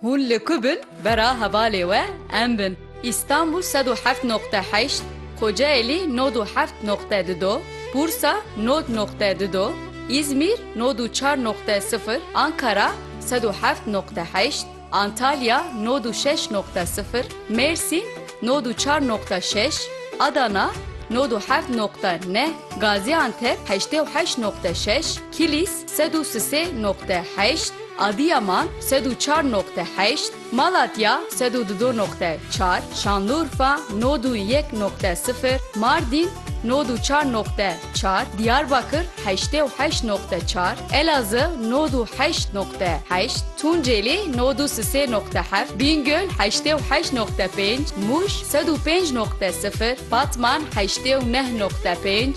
Hûn li ku bin bera hevalê we em bin. Îstanbûl sed û heft noqte heşt, Kocaelî nod û heft noqte du do, Bursa nod noqte du do, Îzmîr nod û çar noqte sifir, Ankara sed û heft noqte heşt, Antalya nod û şeş noqte sifir, Mêrsîn nod û çar noqte şeş, Adana nod û heft noqte neh, Gazîantep heştê û heşt noqte şeş, Kilîs, Sed û sisê noqte heşt, Adîyaman, sed û çar noqte heşt, Malatya, sed û dido noqte çar, Şanlurfa, nod û yek noqte sifir, Mardîn, nod û çar noqte çar, Dîyarbakir, heştê û heşt noqte çar, Elazığ, nod û heşt noqte heşt, Tuncêlî, nod û sisê noqte heft, Bîngöl, heştê û heşt noqte pênc, Mûş, sed û pênc noqte sifir, Batman, heştê û neh noqte pênc,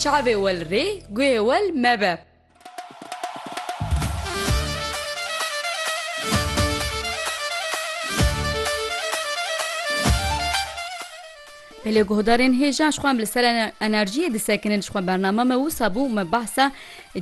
Çavê wel rê, guhê wel mebe. Belê guhdarên hêja ji xwe em li ser enerjiyê disekinin ji xwe bername me wisa bû me behsa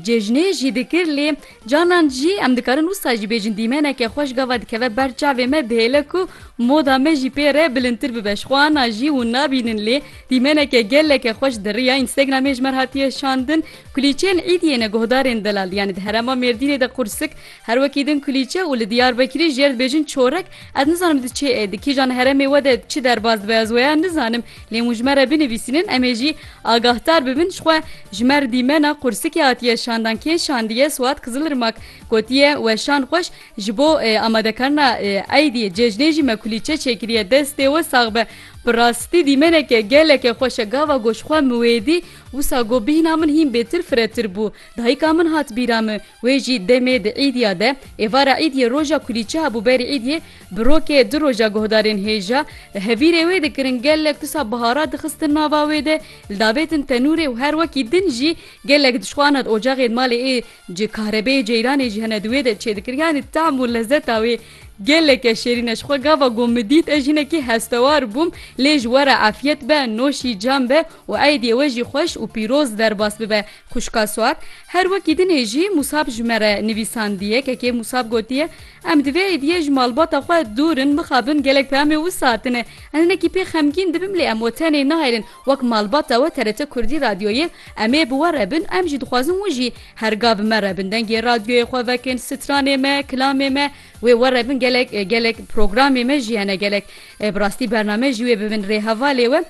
cejnê jî dikir lê Canan jî em dikarin wisa jî bêjin dîmeneke xwe ji gava dikeve ber çavê me dihêle ku moda me jî pê re bilindtir bibe ji xwe ana jî hûn nabînin lê dîmeneke geleke xweş di riya Instagramê ji mer hatiye şandin kulîçeyên êdiyê ne guhdarên delal yanî di herema Mêrdînê de qursik her wekî din kulîçe û li Diyarbekirî jê re dibêjin çorek ez nizanim di çê di kîjan heremê we de çi derbas dibe ez weya nizanim lê hûn ji me re binivîsînin em ê jî Agahdar bibin ji xwe ji me Dîmena Qursikê hatiye şandan kê şandiye Swat Kizilirmak gotiye weşan xweş ji bo amadekarina eydî cejnê jî me kulîçe çêkiriye destê we sax be bi rastî dîmeneke geleke xweş e gava got ji xwe min wê dî wisa got bîhna min hîn bêtir firetir bû dayika min hat bîra min wê jî demê di îdiya de êvara îdiyê roja kulîçe hebû berî îdiyê Bi rokê du roja guhdarên hêja li hevîrê wê dikirin gelek tusa bihara dixistin nava wê de, li davêtin tenûrê û her wekî din jî gelek dişxwana di ocexê di malê ê ji kahrebeyê ceyranê jî hene di wê de çêdikir yanî tehm û lezeta wê geleke şêrîn e ji xwe gava got min dît ez jinekî hestewar bûm lê ji we re efyet be noşî cem be û eydiyê we jî xweş û pîroz derbas bibe Xwişka Suat, Her wekî dinê jî Musab ji me re nivîsandiye. Kekê Musab gotiye, Em di vê êdiyê ji malbata xwe dûr in, mixabin gelek peyamê wisa hatine. Ez hinekî pê xemgîn dibim lê em we tenê nahêlin. Wek malbata we TRT Kurdî Radyoyê em ê bi we re bin, em jî dixwazin hûn jî her ga bi me re bin. Dengê radyoyê xwe vekin, stranê me, kilamê me wê we re bin. Gelek gelek programê me jî hene. Gelek Bi rastî bername jî wê bi min rê heva lê we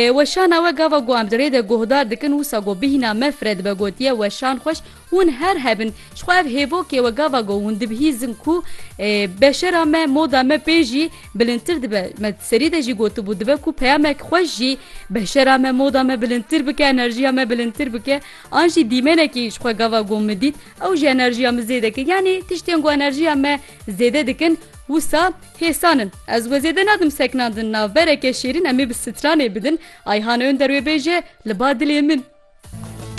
weşana we gava ku em di rê de guhdar dikin wisa ku bihîna me fire dibe gotiye weşan xweş hûn her hebin ji xwe ev hêvokê we gava ku hûn dibihîzin ku beşera me moda me pê jî bilindtir dibe me di serî de jî gotibû dibe ku peyamek xweş jî beşera me moda me bilindtir bike enerjiya me bilindtir bike an jî dîmenekî ji xwe gava ku min dît ew jî enerjiya min zêde kir yanî tiştên ku enerjiya me Zêde dikin wisa hêsan in. Ez we zêde nadim seknandin navbereke şêrîn em ê bi stranê bidin ayhan önderwê bêje li ba dilê min.